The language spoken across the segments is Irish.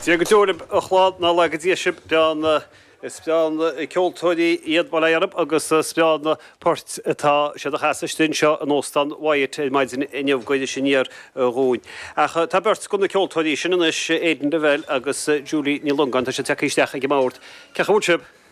Dia go deo libh a chlann, nár laga Dia sibh, go deimhin is breá na ceoltóirí iad bail ó Dhia oraibh agus is breá na poirt atá siad a chasadh istigh anseo in Óstán Wyatt ar maidin inniu, go bhfaighidh sin fhior dhúinn. Ach tá beirt de na ceoltóirí sin anois, Aidan Revelle agus Julie Ní Longáin, tá siad tagtha isteach ag an mbord. Cén chaoi a bhfuil sibh?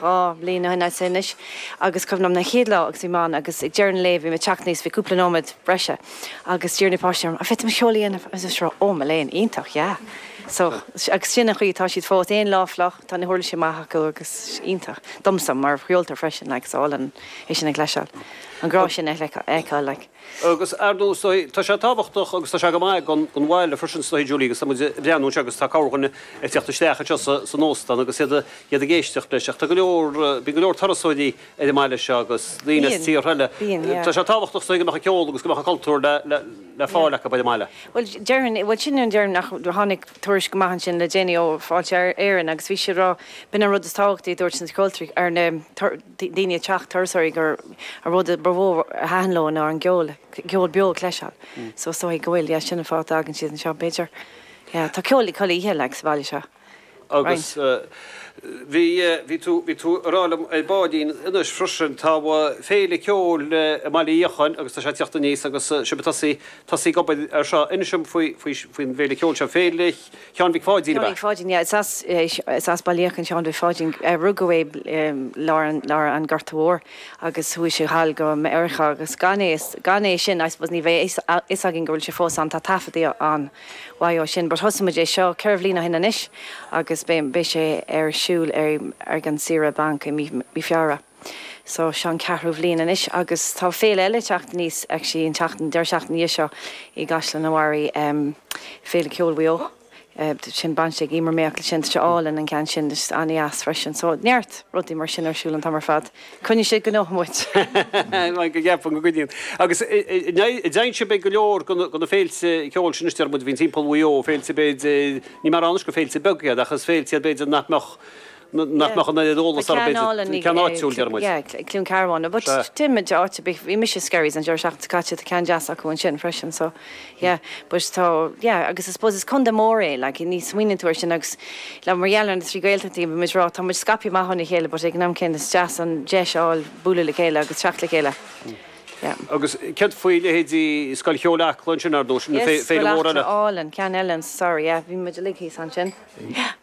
Dhá bhliain ó shin anois agus is cuimhin liom an chéad lá agus bhí mé ann agus ag deireadh an lae bhí mé ag teacht aníos, bhí cúpla nóiméad breise agus d'iarr na páistí orm, 'An bhféadfaimis ceol a dhéanamh? Agus is rá, 'Ó, mo léan, iontach, yeah. So, agus sin an chaoi atá siad fós, aon lá fliuch, tá na huirlisí amach acu agus iontach, domsa mar cheoltóir freisin, like, is álainn é sin a chloisteáil, an grá sin a fheiceáil, like. Agus ar ndóigh, tá sé tábhachtach agus tá sé go maith don don bhaile freisin, is dóigh, Julie, agus tá muid ag breathnú anseo agus tá corrdhuine ag teacht isteach anseo sa san óstán agus iad iad ag éisteacht leis ach tá go leor, bíonn go leor turasóirí ar an mbaile seo agus daoine as tíortha eile. Tá sé tábhachtach, is dóigh, go mbeadh an ceol agus go mbeadh an cultúr le, le, le fáil acu ar an mbaile. Bhuel, déarfainn, bhuel, sin an déarfainn ach tháinig tuairisc amach ansin le déanaí ó Fáilte Éireann agus bhí siad ag rá, b'in an rud is tábhachtaí a dúirt na ceoltóirí nó na daoine ag teacht, turasóirí, gur an rud ba mhó a thaitin leo ná an ceol, ceol beo a chloisteáil. So is dóichí go bhfuil, yeah, sin an fáth a dtagann siad anseo b'fhéidir. Yeah, tá ceol chuile oíche, like, sa bhaile seo. Agus bhí, bhí tú, bhí tú ag rá liom ar baillín anois freisin, tá féile ceoil i mBaile Uí Fhiacháin agus tá sé ag teacht aníos agus sibh ag tosaí, tosaí ag obair ar seo. Inis dom faoi, faoi, faoin bhféile ceoil seo, Féile. Sheáin Mhic Pháidín ab ea? Mhic Pháidín, yeah. Is as Baile Uí Fhiacháin Sheáin Mhic Pháidín. Rugadh é i lár an Ghorta Mhóir agus chuaigh sé thall go Meiriceá agus gan é sin I suppose ní bheadh a fhios againn go bhfuil sé fós ann. Tá taifeadaí ann mhaith ó sin but thosaigh muid é seo ceithre bhliain ó shin anois agus beidh sé ar siúl ag an Saoire Bainc i mí Feabhra. So seo an ceathrú bhliain anois agus tá féile eile ag teacht aníos, actually an tseachtain, deireadh seachtaine ina dhiaidh seo i gCaisleán an Bharraigh, em, Féile Ceoil Mhaigh Eo, eh, sin baint ag Emer Mayock, sin, tá sé álainn an ceann sin, just an-deas freisin. So neart rudaí mar sin ar siúl an t-am ar fad. Coinníonn sé gnóthach muid. Like go gceapfainn go gcoinníonn. Agus an, an, an dté, an dtéann sibh ag go leor de na, de na féilte ceoil sin is deir muid a bhíonn timpeall Mhaigh Eo, féilte b'fhéidir, ní mar anois gur féilte beaga iad ach is féilte iad b'fhéidir nach mbeadh, nach mbeadh an oiread eolais orthu ach go háitiúil, deir muid. Yeah, ag Cluain Cearbán. But téann muid áit ar bith, bhí mise i Skerries an deireadh seachtaine seo caite, tá ceann deas acu ansin freisin so yeah. But tá, yeah, agus I suppose is contae mór é, like ní smaoiníonn tú ar sin agus like mar gheall ar na trí Gaeltachtaí bhí muid ag rá tá muid scaipthe amach óna chéile but ag an am céanna is deas an deis a fháil bualadh le chéile agus teacht le chéile. Yeah. Agus céard faoi leithéidí Scoil Cheoil Acla ansin ar ndóigh, na Yes, féile ollmhór eile. Álainn, ceann álainn sorry yeah, bhí muid uilig thíos ansin.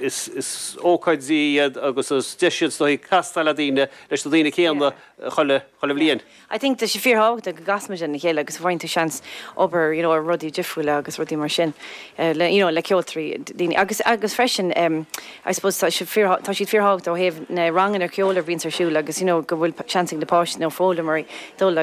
Is ócáidí iad agus is deis iad is dóigh castáil ar dhaoine, leis na daoine céanna chuile bhliain. I think tá sé fíorthábhachtach go gcasann muid lena chéile agus go bhfaigheann tú seans obair you know ar rudaí difriúla agus rudaí mar sin le you know le ceoltoirí, daoine agus agus freisin em I suppose tá sé fíor tá siad fíorthábhachtach ó thaobh na ranganna ceoil a bhíonns ar siúl agus you know go bhfuil seans ag na páistí nó foghlaimeoirí dul